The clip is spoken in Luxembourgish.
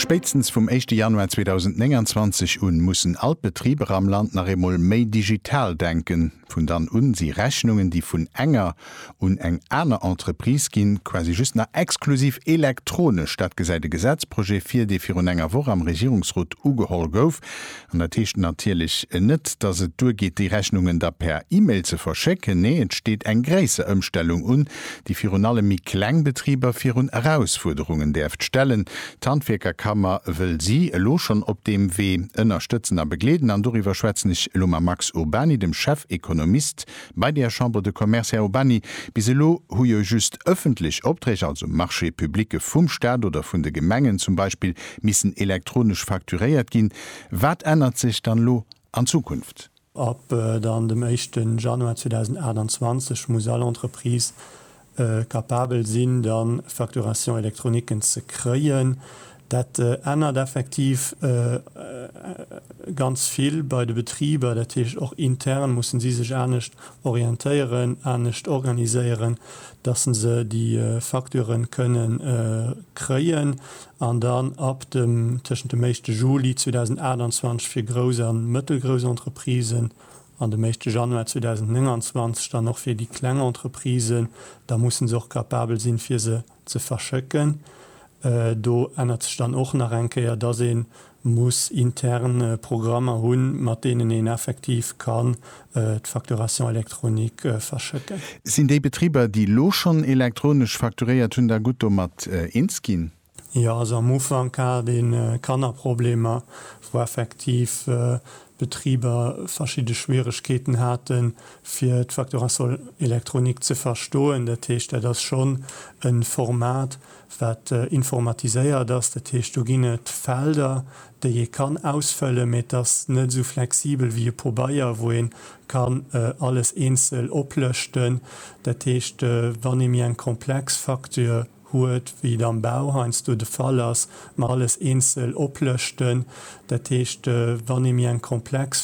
Spéitstens vum éischte Januar 2029 un mussen all d'Betriber am Land nach eemol méi digital denken. Vun dann un si Rechnungen, déi vun enger un eng aner Entreprise ginn, quasi just nach exklusiv elektronesch. Dat gesäit e Gesetzprojet vir, dee virun enger Woch am Regierungsrot ugeholl gouf. An dat heescht natierlech net, dass et duergeet, déi Rechnungen da per E-Mail ze verschécken. Nee, et steet eng gréisser Ëmstellung un, déi virun allem méi kleng Betriber virun Erausfuerderungen däerft stellen. D'Handwierkerkammer wëll si elo schonn op deem Wee ënnerstëtzen a begleeden. An doriwwer schwätzen ech elo mam Max Urbany, dem Chefekonomist Bei der Chambre de Commerce, Här Urbany, bis elo hu jo just ëffentlech Opträg, also Marchés publique vum Staat oder vun de Gemengen zum Beispill, missen elektronesch facturéiert ginn. Wat ännert sech dann elo an Zukunft? Ab dann dem éischten Januar 2028 muss all Entreprise kapabel sinn, da Facturation électroniquen ze kréien. Dat ännert effektiv ganz vill bei de Betriber. Dat heescht, och intern mussen si sech anescht orientéieren, anescht organiséieren, dass se déi Facturen kënne kréien an dann ab dem, tëschent dem éischte Juli 2028 fir grouss a mëttelgrouss Entreprisen an dem éischte Januar 2029 dann och fir déi kleng Entreprisen, da musse se och capabel sinn, fir se ze verschëcken. Do ännert sech dann och nach eng Kéier, dass ee muss intern Programmer hunn, mat deenen een effektiv kann d'Facturation électronique verschëcken. Sinn déi Betriber, déi elo schonn elektronesch facturéiert hunn, da gutt domat eens ginn? Jo, also am Ufank hat ee Kannerproblemer, wou effektiv d'Betriber verschidde Schwieregkeeten hate fir d'Facturation électronique ze verstoen. Dat heescht, dat ass schonn e Format, wat informatiséiert ass. Dat heescht, do ginn et Felder, déi ee kann ausfëllen, mee et ass net esou flexibel wéi e Pobeier, wou ee kann alles eenzel oplëschten. Dat heescht, wann ee méi eng komplex Facture huet, wéi et am Bau heiansdo de Fall ass, mer alles eenzel oplëschten, dat heescht, wann ee méi eng komplex.